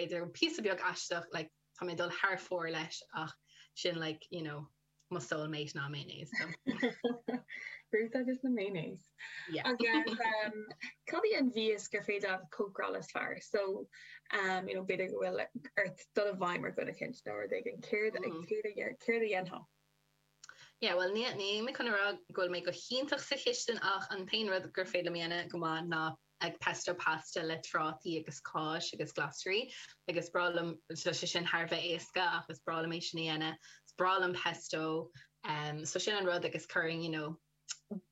idir an píosa beag aisteach like tá mé ag dul thar fóir leis ach sin like you know mo soul mate ná mayonnaise. Ruth agus na mayonnaise. Yeah. Agus um, cad é an mhias gur féidir leat cócaráil is fearr? So, um, you know, b'fhéidir go bhfuil ort dul i bhfeidhm ar dhuine éicint nó rud éigin, céard a mm-hmm. céard a dhéan- céard a dhéanfá? Yeah, well, ní, níl mé chun a rá go bhfuil mé go hiontach sa chistin ach an t-aon rud gur féidir liom a dhéanamh go maith ná ag pesto pasta le trátaí agus cáis agus glasraí agus is breá liom, tá sé sin thar a bheith éasca ach is breá liom é sin a dhéanamh, is breá liom pesto, so sin an rud agus chuirfinn you know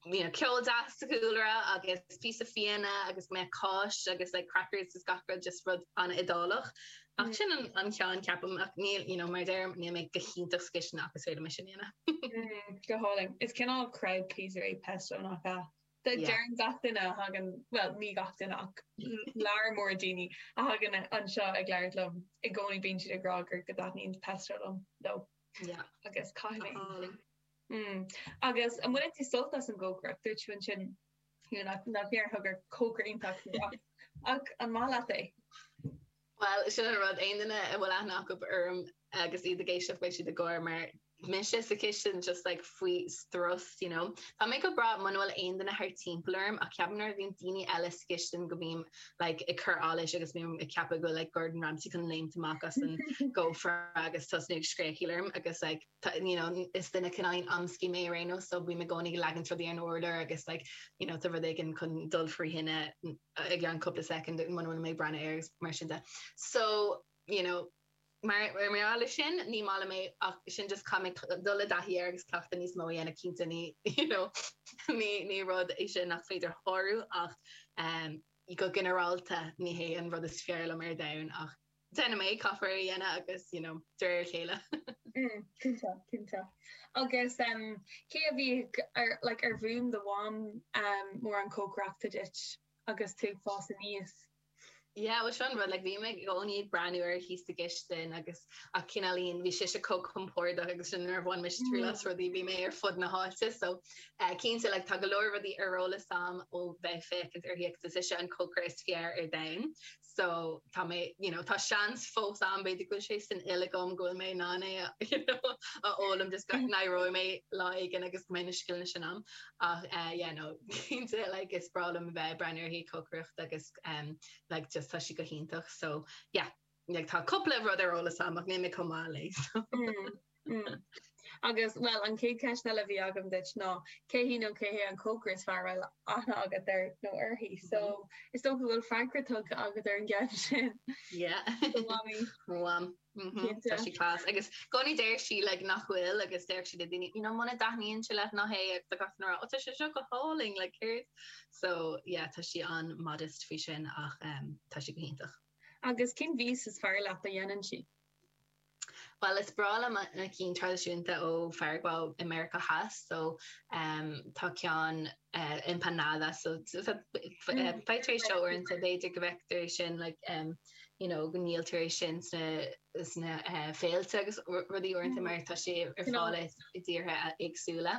you know ceol deas sa chúlra agus píosa fíona agus go mbeadh cáis agus like crackers agus gach rud just rud an-Iodálach ach sin an ceann ceapaim ach níl you know mar deirim níl mé go hiontach sa gcistin ach is féidir liom é sin a dhéanamh. Go hálainn. Is cineál crowd pleaser é pesto nach ea? Deireann gach duine a thagann, bhuel, ní gach duine ach lear mór daoine a thagann anseo ag labhairt liom i gcónaí bíonn siad ag rá gur go dtaitníonn pesto liom, leo, agus caithfidh mé sin. Mm. Agus an mbaineann tú sult as an gcócaireacht? Dúirt tú ansin nach ndéarfá gur cócaire iontach tú ach an maith leat é? Bhuel, sin an rud, aon duine a bhfuil aithne acu orm agus iad ag éisteacht beidh siad ag gáire mar mise sa chistin just like faoi strus, you know. Tá mé go breá muna bhfuil aon duine thar timpeall orm ach ceapaim nuair a bhíonn daoine eile sa chistin go mbím like ag cur allais agus bím ag ceapadh go bhfuil like Gordon Ramsay chun léimt amach as an gcófra agus tosnú ag scréachaíl orm agus like tá, you know, is duine cineál amscaí mé ar aon nós so bím i gcónaí ag leagaint rudaí ar an urlár agus like, you know, tá rud éigin chun dul faoi thine i gceann cúpla soicind muna bhfuil mé ag breathnú air agus mar sin de. So, you know, mar gheall air sin, ní maith liom é ach sin just caithfidh mé dul i dtaithí air agus cleachtadh níos mó a dhéanamh cinnte, ní, you know, ní, ní rud é sin nach féidir a shárú ach, go ginearálta, ní hé an rud is fearr liom ar domhan ach, Déanfaidh mé é, caithfear é a dhéanamh agus, you know, de réir a chéile. Cinnte, cinnte. Agus cé a bhí ar, like, ar mhúin do mham mórán cócaireachta duit agus tú ag fás aníos? Yeah, bhuel seo an rud, like, bhí mé i gcónaí ag breathnú uirthi sa gcistin agus, ach cineáilín, bhí sise chomh compordach agus sin nuair a bhain mise triail as rudaí bhí mé ar fud na háite, so cinnte, like, tá go leor rudaí ar eolas a'm ó bheith ag féachaint uirthi agus is ise an cócaire is fearr ar domhan. So tá mé, you know, tá seans fós ann, b'fhéidir go bhfuil sé san fhuil agam go bhfuil mé in ann é a, you know, a fhoghlaim, just go n-éireoidh mé lá éigin agus go mbeidh na scileanna sin ann. Ach eh, yeah, no, cinnte, like, is breá liom a bheith ag breathnú uirthi ag cócaireacht agus em, like, just tá sí go hiontach. So, yeah, like, tá cúpla rud ar eolas agam ach níl mé chomh maith léi, so. Mm. Agus, bhuel, an chéad cheist eile a bhí agam duit ná cé hí nó cé hé an cócaire is fearr a bhfuil aithne agat air nó uirthi. So, is dócha go bhfuil freagra tugtha agat ar an gceist sin. Yeah. Do mhamaí. Mham. Mhm. Cinnte. Tá sí class. Agus i gcónaí deir sí like, nach bhfuil agus deir sí le daoine, you know, muna dtaitníonn sé leat ná hith é agus tá gach uair, ó tá sé seo go hálainn, like, céard? So, yeah, tá sí an modest faoi sin ach um, tá sí go hiontach. Agus cén mhias is fearr leat a dhéanann sí? Bhuel, is breá liom na cinn traidisiúnta ó Pharagua i Meiriceá Theas, so tá ceann empanada, so feictear é seo uaireanta, b'fhéidir go bhfeictear é sin, like, you know, go ndíoltar é sin sna féilte agus rudaí uaireanta mar tá sé ar fáil i dtíortha éagsúla.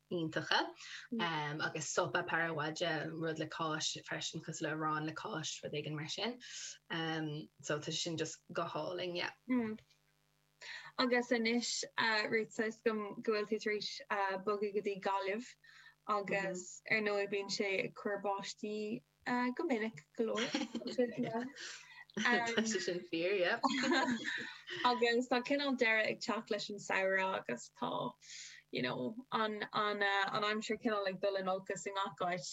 iontacha agus sopa paraguaya, rud le cáis freisin cosúil le arán le cáis, rud éigin mar sin. So tá sé sin just go hálainn, yeah. Agus anois, Ruth, tá a fhios agam go bhfuil tú tar éis bogadh go dtí Gaillimh agus ar ndóigh bíonn sé ag cur báistí Ah, go minic go leor. Tá sé sin fíor, yep. Agus tá cineál deireadh ag teacht leis an samhradh agus tá, you know, an, an, eh, an aimsir cineál ag dul in olcas i ngach áit.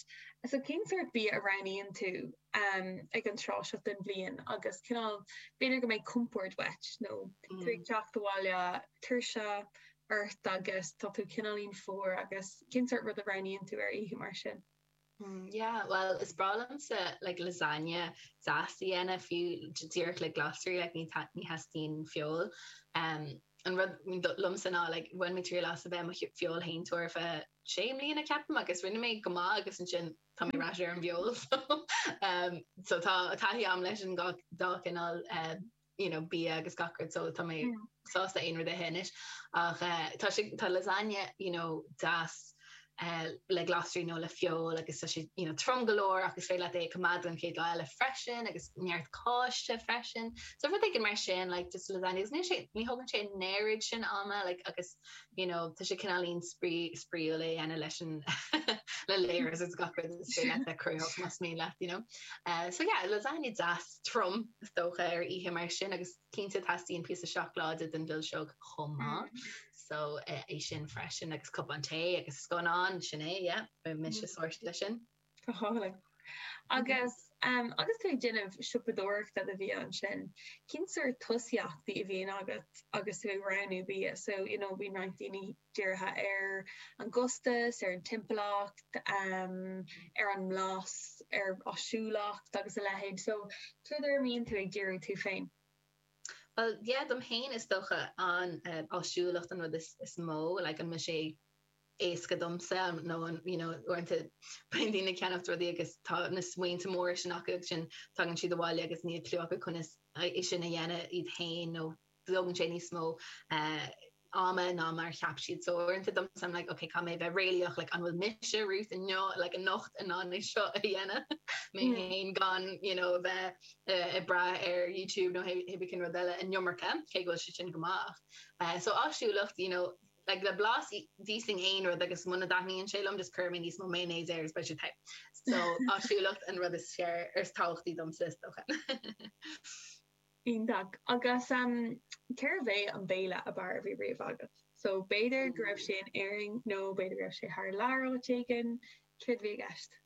So cén sórt bia a roghnaíonn tú, em, ag an tráth seo den bhliain agus cineál, b'fhéidir go mbeidh compord uait nó tú ag teacht abhaile tuirse ort agus tá tú cineáilín fuar agus cén sórt rud a roghnaíonn tú ar oíche mar sin? Umm yeah bhuel is breá liomsa like lasagne deas a dhéanamh fiú díreach le glasraí like ní ta- ní theastaíonn feoil orm an rud do- liomsa ná like bhain mé triail as a bheith i mo sh- feoilséantóir faoi sé mbliana ceapaim agus rinne mé go maith agus ansin tá mé ar ais ar an bhfeoil so umm so tá taithí agam leis an gá- dá chineál umm. you know, bia agus gach rud so tá mé sásta aon rud a ithe anois. Ach eh, tá sé, tá lasagne, you know, deas eh le glasraí nó le feoil agus tá sé, you know, trom go leor ach is féidir leat é a coimeád don chéad lá eile freisin agus neart cáise freisin. So rud éigin mar sin, like just lasagne agus níl sé, ní thógann sé an oiread sin ama like agus, you know, tá sé cineáilín spraoi, spraoiúil é a dhéanamh leis an le layers agus gach rud is féidir leat a chruthú más mian leat, you know. Eh so yeah, lasagne deas. throm, is dócha, ar oíche mar sin agus cinnte teastaíonn píosa seacláide don mhilseog chomh maith. So, é sin freisin agus cupán tae agus scannán, sin é, yeah, beidh mise sorted leis sin. Go hálainn. Agus agus tú ag déanamh siopadóireachta do bhia ansin, cén sórt tosaíochtaí a bhíonn agat agus tú ag roghnú bia? So, you know, bíonn roinnt daoine dírithe ar an gcostas, ar an timpeallacht, ar an mblas, ar áisiúlacht agus a leithéid. So, cad ar a mbíonn tú ag díriú tú féin? Bhuel, yeah, dom féin is dócha an áisiúlacht an rud is mó, like an mbeadh sé éasca domsa nó an, you know, uaireanta bíonn daoine ag ceannach rudaí agus tá na smaointe móra sin acu agus ansin tagann siad abhaile agus níl cliú acu conas é sin a dhéanamh iad féin nó, Tógann sé níos mó ama ná mar a cheap siad. So uaireanta domsa I'm like okay, caithfidh mé a bheith réalaíoch, like an bhfuil mise, Ruth, inniu, like anocht in ann é seo a dhéanamh mé féin gan you know a bheith ag brath ar YouTube nó pé rud eile an iomarca, cé go bhfuil sé sin go maith. So áisiúlacht you know like le blas d'íosfainn aon rud agus muna dtaitníonn sé liom just cuirim níos mó mayonnaise air agus beidh sé te. So áisiúlacht an rud is fearr is tábhachtaí domsa is dócha. Iontach. Agus cérbh é an béile ab fhearr a bhí riamh agat? So, b'fhéidir go raibh sé in Éirinn nó b'fhéidir go raibh sé thar lear áit éigin. Céard a bhí i gceist?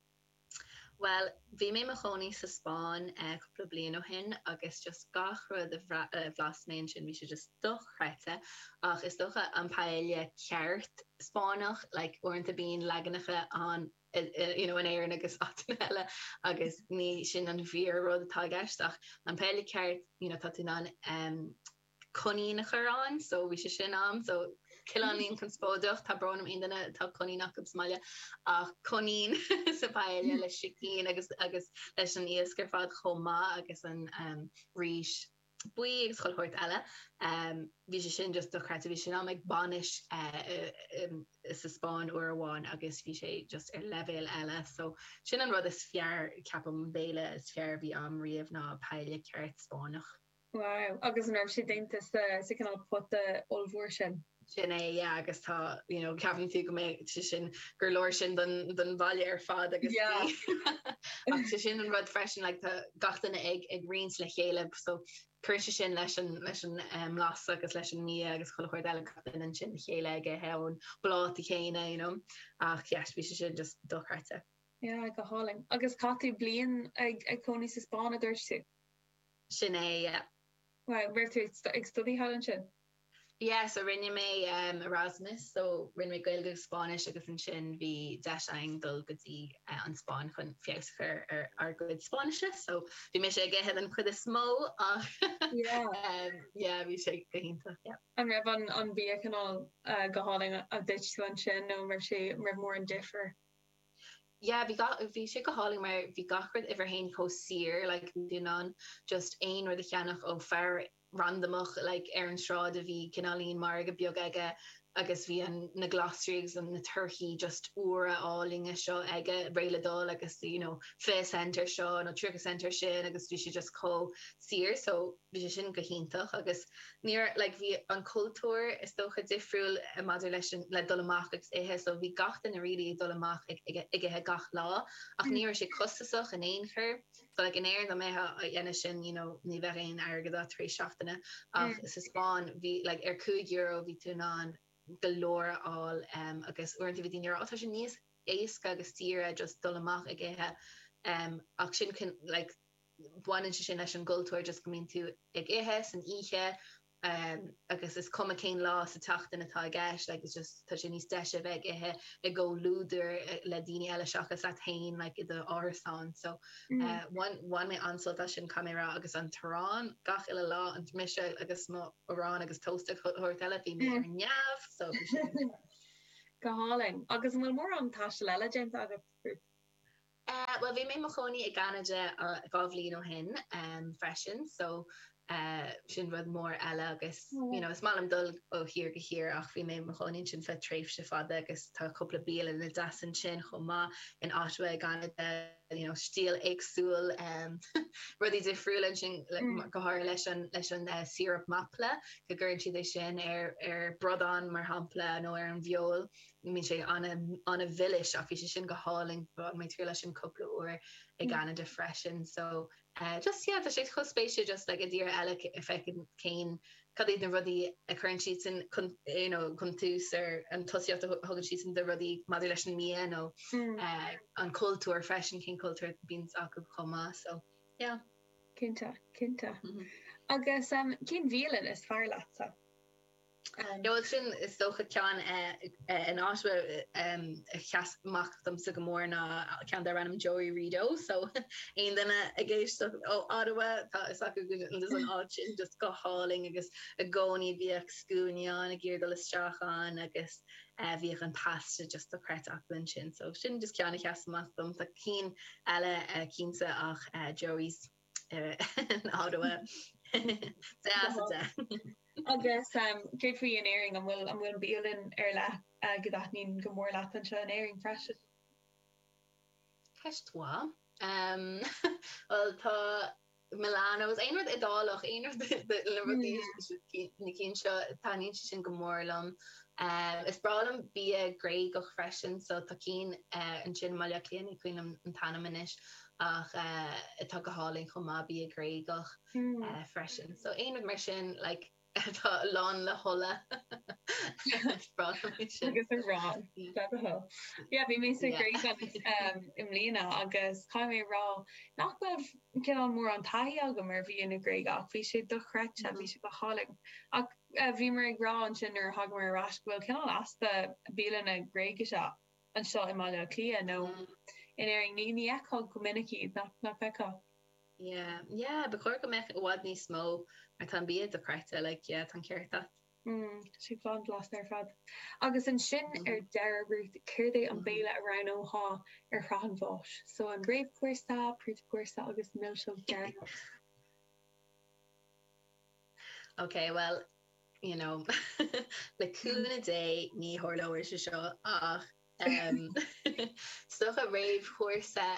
Bhuel, bhí mé i mo chónaí sa Spáinn cúpla bliain ó shin agus just gach rud a bhlas mé ansin, bhí sé just dochreidte. Ach is dócha an paella ceart Spáinneach, like uaireanta bíonn leaganacha ann you know in Éirinn agus áiteanna eile agus ní sin an fíor rud atá i gceist ach an paella ceart you know tá tú in ann em coinín a chur ann so bhí sé sin am so cineáilín conspóideach tá brón orm aon duine atá coinín acu sa mbaile ach coinín sa paella le sicín agus agus leis an iasc ar fad chomh maith agus an em rís buí agus chuile shórt eile. Bhí sé sin just dochreidte. Bhí sé a'm em ag bainis sa Spáinn uair amháin agus bhí sé just ar leibhéal eile. So sin an rud is fearr, ceapaim, an béile is fearr a bhí a'm riamh ná paella ceart Spáinneach. Wow, agus an raibh sé déanta sa cineál pota ollmhór sin? sin é, yeah, agus tá, you know, ceapann tú go mbeidh sé sin, gur leor sin don bhaile ar fad agus bhí, ach sé sin an rud freisin, like, tá gach duine ag roinnt le chéile, so cuireann sé sin leis an, leis an mblas agus leis an mbia agus chuile shórt eile, gach duine ansin le chéile ag ithe ón bpláta chéanna, you know, ach yes, bhí sé sin just dochreidte. Yeah, go hálainn. Agus chaith tú bliain ag ag cónaí sa Spáinn a dúirt tú? Sin é, yeah. Raibh tú ag ag staidéar thall ansin? Yeah, so rinne mé Erasmus, so rinne mé Gaeilge agus Spáinnis agus ansin bhí deis againn dul go dtí an Spáinn chun feabhas a chur ar ár gcuid Spáinnise, so bhí mise ag ithe den chuid is mó ach yeah bhí sé go hiontach yeah. An raibh an bia cineál go hálainn a d'ith tú ansin nó an raibh sé, an raibh mórán difear? Yeah bhí gach, bhí sé go hálainn mar bhí gach rud uimhir a haon chomh saor like bhí tú in ann just aon rud a cheannach ó a randamach like ar an tsráid a bhí cineáilín margadh beag aige agus bhí an na glasraí agus an na torthaí just úra álainne seo aige réidh le dul agus you know fiche cent ar seo nó tríocha cent ar sin agus bhí sé just chomh saor so bhí sé sin go hiontach agus like bhí an cultúr is dócha difriúil eh, maidir leis an le dul amach agus ithe so bhí gach duine really ag dul amach ag, ag, ag, ag ithe gach lá ach ní raibh sé costasach in aon chor So like in Éirinn dá mbeifeá á dhéanamh sin you know ní bheadh aon airgead agat tar éis seachtaine ach sa Spáinn bhí like ar cúig euro bhí tú in ann go leor a fháil em agus uaireanta bhí daoine ag rá ó tá sé níos éasca agus saoire just dul amach ag ithe em ach sin like baineann sé sin leis an gcultúr just go mbíonn tú ag ithe san oíche agus is cuma cén lá sa tseachtain atá i gceist, like it's just, tá sé níos deise a bheith ag ithe i gcomhluadar le daoine eile seachas leat féin like i do árasán so bhain bhain mé an-sult as sin caithfidh mé a rá agus an t-arán gach uile lá mise agus mo arán agus toast ach an babhta eile bhí mé ar neamh so go hálainn. Agus an bhfuil mórán taistil eile déanta agat? Eh, bhuel, bhí mé i mo chónaí i gCanada dhá bhliain ó shin freisin so sin rud mór eile agus, you know, is maith liom dul ó thír go thír ach bhí mé i mo chónaí ansin ar feadh tréimhse fada agus tá cúpla bialanna deasa ansin chomh maith, in Ottawa i gCanada, you know, stíl éagsúil, em, rudaí difriúla ansin, go háirithe leis an, leis an síoróip maple, go gcuireann siad é sin ar, ar bhradán, mar shampla, nó ar an bhfeoil. Bíonn sé an-mhilis ach bhí sé sin go hálainn. Bhain mé triail as sin cúpla uair i gCeanada freisin. So just yeah, tá sé chomh spéisiúil just like i dtír eile a fheiceáil cén, cad iad na rudaí a chuireann siadsan chun, you know, chun tús nó an tosaíocht a thugann siadsan do rudaí maidir leis an mbia nó an cultúr freisin, cén cultúr a bhíonn acu chomh maith. So yeah. Cinnte, cinnte. Agus cén bhialann is fearr leatsa? Bhuel is dócha ceann in Ottawa a sheas amach domsa go mór ná ceann darb ainm Joey Rideau so aon duine ag éisteacht ó Ottawa tá fhios acu cé chomh deas an áit sin just go hálainn agus i gcónaí bhíodh scuainí ann ag iarraidh dul isteach ann agus bhíodh an pasta just dochreidte acu ansin so sin just ceann a sheas amach dom tá cinn eile cinnte ach Joey's in Ottawa deas a deich. Agus céard faoi in Éirinn? An bhfuil an bhfuil an bialann ar leith go dtaitníonn go mór leat anseo in Éirinn freisin? Ceist mhaith. Bhuel tá Milano, is aon rud Iodálach, aon rud le rudaí na cinn seo, taitníonn sé sin go mór liom. Is breá liom bia Gréagach freisin, so tá cinn ansin, Maileo Clini, ní cuimhin liom an t-ainm anois. ach atá go hálainn chomh maith, bia Gréagach freisin. So aon rud mar sin like atá lán le hola, bráithfidh sin. Agus arán, beag a thoil. Yeah, bhí mé sa Ghréig i mbliana agus caithfidh mé a rá nach raibh cineál mórán taithí agam ar bhia na Gréige ach bhí sé dochreidte, bhí sé go hálainn. Ach bhíomar ag rá ansin nuair a thángamar ar ais go bhfuil cineál easpa bialanna Gréagacha anseo i mBaile Átha Cliath nó in Éirinn, ní fheicfeá go minic iad, nach bhfeicfeá? Yeah, yeah, ba chóir go mbeadh i bhfad níos mó, mar tá an bia dochreidte, like, yeah, tá an ceart agat. Mm, sé an-bhlasta ar fad. Agus ansin ar deireadh, Ruth, céard é an béile a roghnófá ar shraith an bháis? So, an réamhchúrsa, príomhchúrsa agus milseog deireanach? Ok, bhuel, you know, le cúnamh Dé ní tharlóidh sé seo, ach is dócha réamhchúrsa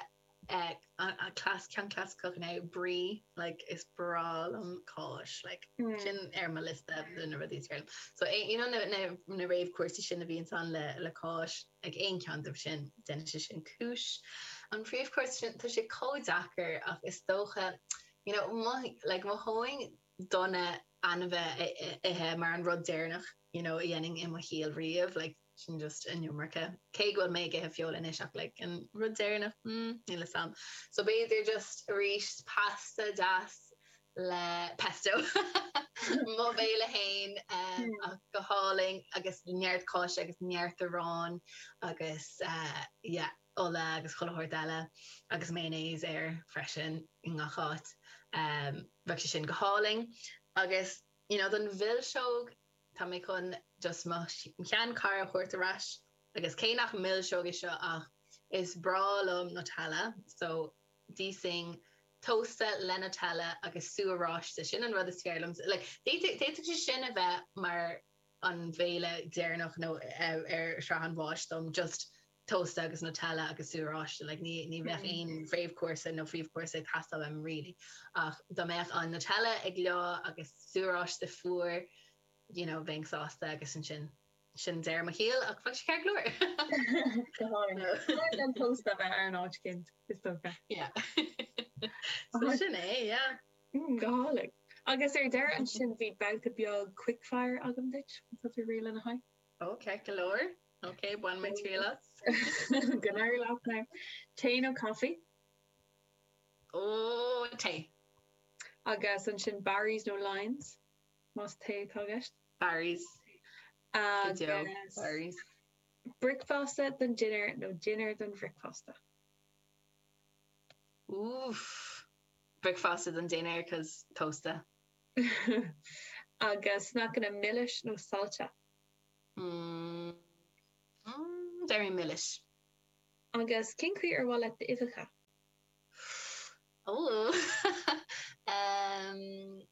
ceann clasaiceach nó brie, like, is breá liom cáis, like, sin ar mo liosta de na rudaí is fearr liom. So, you know, na réamhchúrsaí sin a bhíonns ann le cáis, ag aon cheann de sin, déanfaidh sé sin cúis. An príomhchúrsa sin, tá sé chomh deacair, ach is dócha, You know, mothaím, like, mothaím go dona ainmhí a ithe mar an rud deireanach, you know, a dhéanfainn i mo shaol riamh, like, sin just an iomarca. Cé go bhfuil mé ag ithe feoil anois, ach, like, an rud deireanach, hmm, níl 'fhios a'm. So b'fhéidir just arís pasta deas le pesto, mo bhéile féin, ach go hálainn, agus neart cáise agus neart aráin, agus, yeah. ola agus chuile shórt eile agus mayonnaise air freisin i ngach áit. Bheadh sé sin go hálainn. Agus you know don mhilseog, tá mé chun just mo sheanchara a thabhairt ar ais agus cé nach milseog é seo ach is breá liom Nutella so d'íosfainn tósta le Nutella agus sú oráiste, sin an rud is fearr liom. Like d'fhéadfadh sé sin a bheith mar an béile deireanach nó ar shraith an bháis dom just. tósta agus Nutella agus sú oráiste like ní ní bheadh aon réamhchúrsa nó príomhchúrsa ag teastáil uaim really ach dá mbeadh an Nutella go leor agus sú oráiste fuar you know bheinn sásta agus ansin sin deireadh mo shaoil ach bheadh sé ceart go leor. Go hálainn. Go leor den tost a bheith ar an áit cint is dócha. Yeah. So sin é yeah. Mm go hálainn. Agus ar deireadh ansin beidh babhta beag quick fire agam duit, má tá tú réidh lena aghaidh. Oh ceart go leor. Ok, bainfidh mé triail as. Go n-éirí leat now. Tae nó caife? Oh, tae. Agus ansin Barry's nó Lyons, más tae atá i gceist? Barry's. Go deo, Barry's. Agus bricfeasta don dinnéar nó dinnéar don bhricfeasta? Oof. Bricfeasta don dinnéar, 'cos tósta. Agus sneaiceanna milis nó sailte? mm, very milis. Agus cén chaoi ar mhaith leat d'uibheacha? Ooh. um,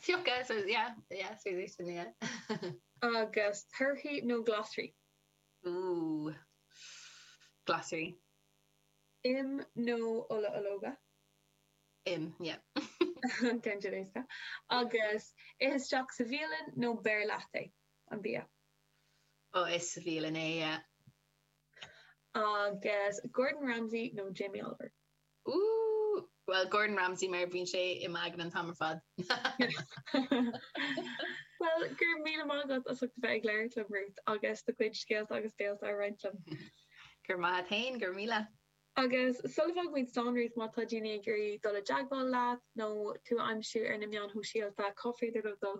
fiuchta, so yeah, yeah, so yeah, sin, yeah. Agus torthaí nó glasraí? Ooh. Glasraí. Im nó ola ológa? Im, yeah. Im gan dabht. Agus ithe istigh sa bhialann nó beir leat é? an bia. Ó, sa bhialann, yeah. Agus Gordon Ramsay nó Jamie Oliver? Ooh! Bhuel, Gordon Ramsay mar bhíonn sé i m'aigne an t-am ar fad. Bhuel, gur míle maith agat as ucht a bheith ag labhairt liom, Ruth, agus do chuid scéalta agus féiltí a roinnt liom. Go raibh maith agat féin, gur míle. Agus sula bhfágann muid slán, Ruth, má tá daoine ag iarraidh dul i dteagmháil leat nó tú a aimsiú ar na meáin shóisialta, cá féidir leo dul?